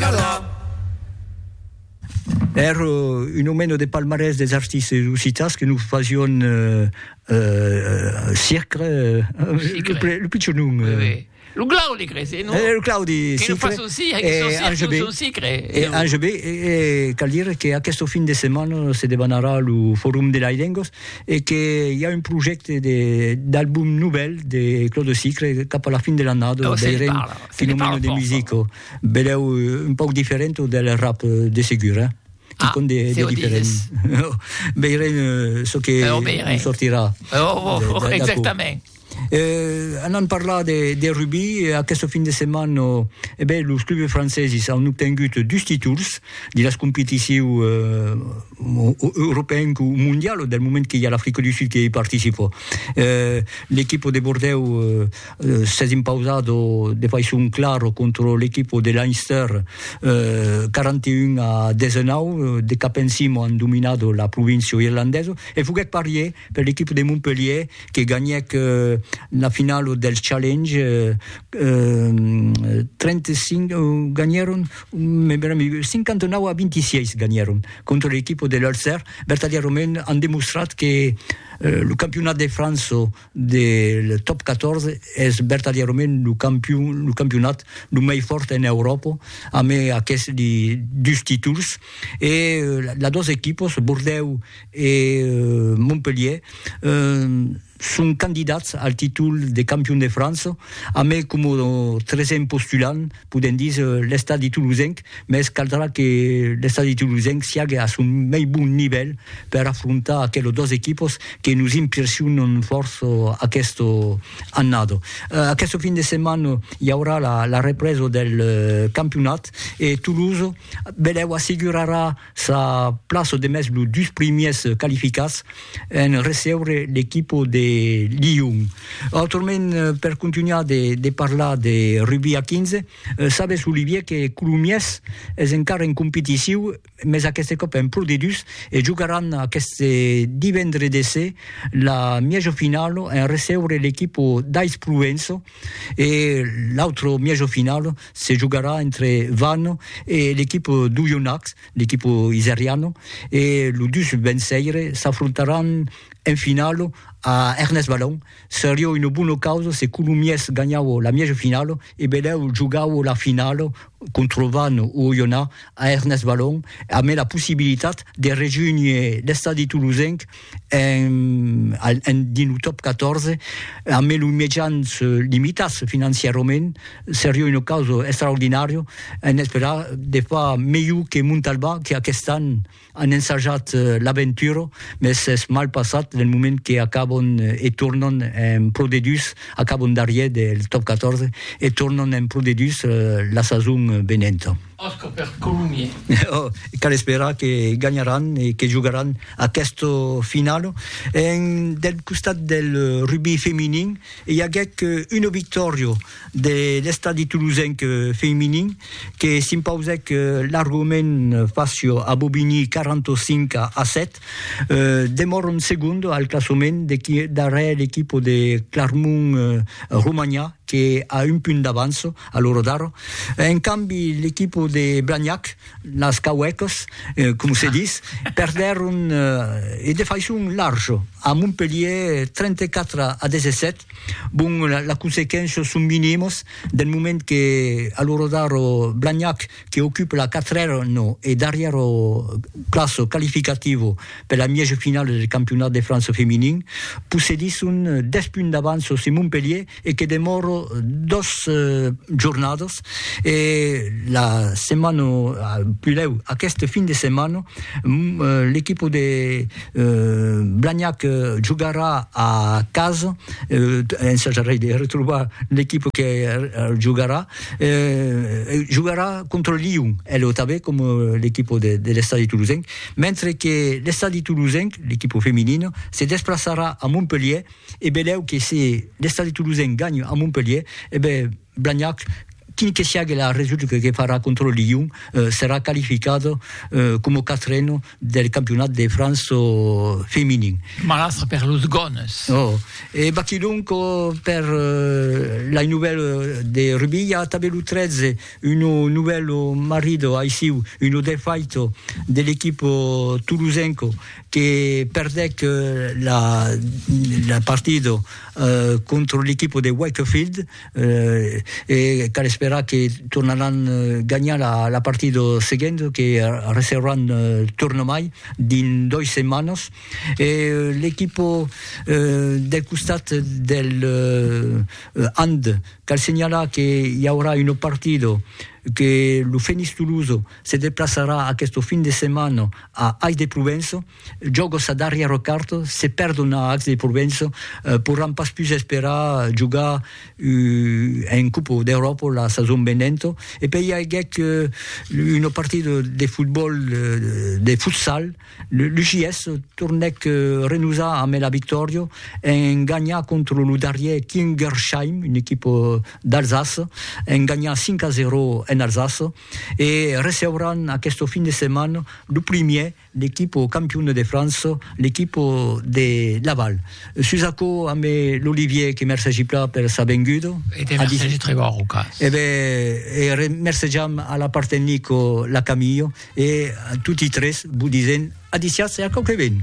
Calar. Èr un omeno de palmarès des artistes occitans que nos fasión Sicre, lo pichon nom. Lo Claudi, crei, se non? Lo Claudi Sicre. Que nos fason Sicre, que son Sicre, que son Sicre. E Ange B, cal dire qu'aquesto fin de setmana se debanarà lo Forum de las Lengas e que i a un projècte d'album novèl de Claudi Sicre cap a la fin de l'annada, veirem, fin omeno de musica. Belèu un pauc diferent del rap de segur, eh? Ah, con de, de diferent. Veirem uh, çò que oh, veirem. sortirà. Oh, oh, oh exactament. Eh, anant parlar de, de rugby, eh, aquesta fin de setmana oh, eh bé, los clubs franceses han obtengut dus títols de les competicions eh, européennes ou mondiales del moment que hi ha l'Afrique du Sud que hi participa. Eh, L'equip de Bordeaux eh, s'es impausado de faiçon clara contra l'equipo de Leinster 41 a 19, de cap encima an dominat la província irlandesa e foguèt parier per l'equipo de Montpellier que ganhèc la finala del Challenge 35, ganhèron 59 a 26 ganhèron contra l'equipo de l'Ulster, vertadièrament an demostrat que lo campionat de França Del top 14 es vertadièrament lo campion, lo campionat lo mei fòrt en Euròpa, amb aqueth li dus títols, e las dos equipos, Bordèu e Montpelhier, son candidats al títol de campion de França, amb coma tresèm postulant podem dis, l'estadi tolosenc, mès caldrà que l'estadi tolosenc siague a son mei bon nivèl per afrontar aquelos dos equipos que nos impressionan fòrça aquesta annada. Aquesta fin de setmana i aurà la represa del campionat e Toulouse, benlèu, assegurarà Sa plaça demest los dus primièrs qualificats en recebre l'equipa de Lyon. Autrament, per continuar de, de parlar de rugby a 15, sabes, Olivier, que Colomiers es encara en competitiu, mes aqueste còp en Pro D2, e jogaràn aqueste divendre de se la mièja finala en recebre l'equipa d'Ais Provença, E l'autre mièjo final se jogarà entre Vannes e l'equipa d'Oyonnax, l'equipa iseriana, e los dus venceires s'afrontaràn en final a Ernest Vallon. Seriá una bona causa se Colomiers ganhava la mièjo final e Belèu jogava la final contra Vannes o Oyonnax a Ernest Vallon, amé la possibilitat de rejónher l'estadi tolosenc en 1914, a mès los mejans limitats financièrament, seriá una causa extraordinària en esperar de far melhor que Montalbà, que aquest an an ensajat l'aventura, mès es mal passat del moment que acabon e tornan en Pro D2, acabon darrier del Top 14 e tornan en Pro D2 la sason venenta. Òsca per Colomier. Oh, cal esperar que ganharàn e que jogaràn aquesta finala. En, del costat del rugbi feminin, i aguèc una victòria de l'Estadi Toulousenc feminin que s'impausèc largament fàcia a Bobigny 45 a 7. Demòran segonda al classament darrèr l'equipa de Clarmont Romanha que a un punt d'avança. a l'ora d'ara. En cambi, l'equipo de Blagnac, las Cauècas, com se dis, perdèron e de faiçon larja a Montpelhièr 34 a 17. Bon, las consequéncias son minimas del moment que a l'ora d'ara Blagnac, que ocupa la quatrèra e darrièra plaça qualificativa per la mièja finala del campionat de França feminin, possedisson 10 punts d'avança sus Montpelhièr e que demòro dos jornadas e la setmana pulèu aqueste fin de setmana l'equipa de Blagnac jogarà a casa ensajarei de retrobar l'equipa que jogarà jogarà contra Lion e lo tanben coma l'equipa de l'estadi tolosenc mentre que l'estadi tolosenc l'equipa feminina se desplaçarà a Montpelhièr E belèu que se l'Estadi Toulousain ganha a Montpelhier, e ben Blagnac, quin que siague la resulta que farà contra lo Lyon, serà qualificat coma quatren del campionat de França feminin. Malastre per los Gones! Oh! E baquilhonc per lai novèl de rugbi, i a tanben lo 13, un novèl marrit aissiu, un defait de l'equip toulousain. que perdèc la partida contra l'equipa de Wakefield e cal esperar que tornaràn ganhar la partida seguenta que recebràn tornamai dins dois setmanas e l'equipa del costat del hand cal senhalar que i aurà una partida que lo Fenix Tolosa se deplaçarà aqueste fin de setmana a Ais de Provença, jòga sa darrièra carta, se perdon a Ais de Provença, porràn pas pus esperar jogar en Copa d'Euròpa la sason venenta, e pei i aguèt una partida de fotbòl, de futsal, l'UJS tornèc renosar ambe la victòria en ganhar contra lo darrièr Kingersheim, una equipa d'Alsace, en ganhar 5 a 0 en Alsace. e receuràn aqueste fin de setmana lo primièr l'equipa campiona de França, l'equipa de Laval. Sus aquò ambe l'Olivier que mercegi plan per sa venguda. E te mercegi tre gòr au cas. E ben, e remercejam a la part tecnica la Camilha e a toti tres vos disent a disiatz e a quauque ben.